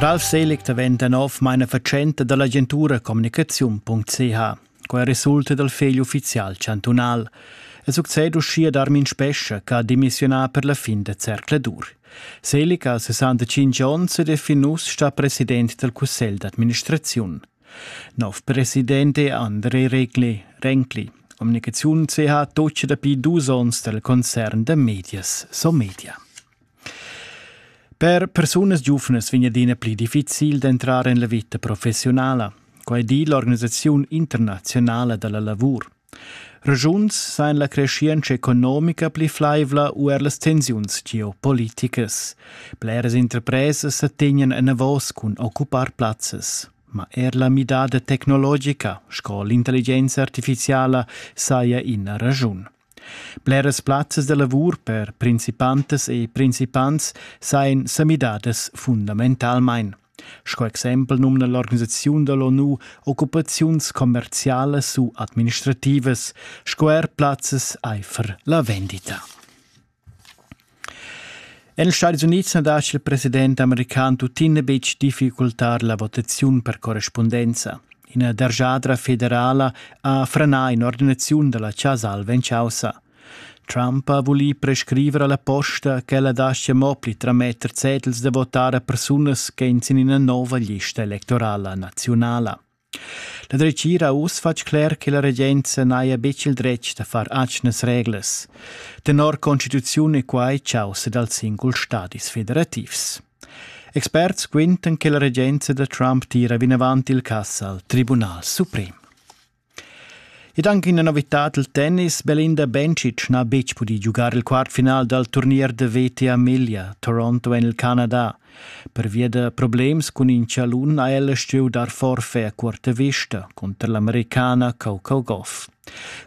Ralf Selig daventa nov mainafatschenta dall'agentura communicaziun.ch. Quai resulta dal fegl ufficial chantunal. E succed uschia Darmin Spescha che ha demissiunà per la fin da zercladur. Selig ha 65 onns ed è fin uss stà president dal cussegl d'administraziun. Nov president è André Regli, Renkli. Communicaziun se ha toce dapi dus onns del concern de medias Somedia. Per persunas giuvnas vegn adina pli difficil d'entrar en la vita professionala. Quai di l'organisaziun internazionala della lavur. Regiuns san la creschientscha economica pli flaivla u er las tensiuns geopoliticas. Bleras interpresas sa tegnan enavos cun occupar plazzas. Ma er la midada tecnologica, sco l'intelligenza artificiala, saja ina raschun. Bleras plazzas da lavur per principantas e principants sajan sa midadas fundamentalmain. Sco exempel numna l'organisaziun dall'ONU occupaziuns commercialas u administrativas sco er plazzas aifer la vendita. En ils Stati Unids na lascia il president american tuttina betg difficultar la votaziun per correspondenza. Ina dergiadra federala ha franà in'ordinaziun da la Casa Alva en chaussa. Trump ha vulì prescriver a la posta ch'ella daschia mo pli trametter cedels da votar a persunas ch'èn sin ina nova lista electorala naziunala. La dretgira ha uss fatg cler che la regenza n'haja betg il dretg da far atgnas reglas. Tenor constituziun è quai chaussa dals singuls stadis federativs. Experts quintan che la regenza da Trump tira vinavant il cass al Tribunal suprem. Ed anche ina novitad il tennis. Belinda Bencic n'ha betg pudì giugar il quartfinal dal turnier da veti a Miglia, Toronto en il Canada. Pervia da problems cun in chalun ha ella stuì dar forfè a curta vista cunter l'americana Coco Goff.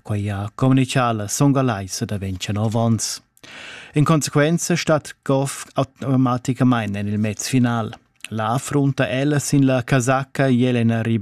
Quai ha communicà la songalaisa da 29 onns. In conseguenza stat Goff automaticamain en il mezfinal. Là affrunta ella sin la casacca Jelena Rybakina.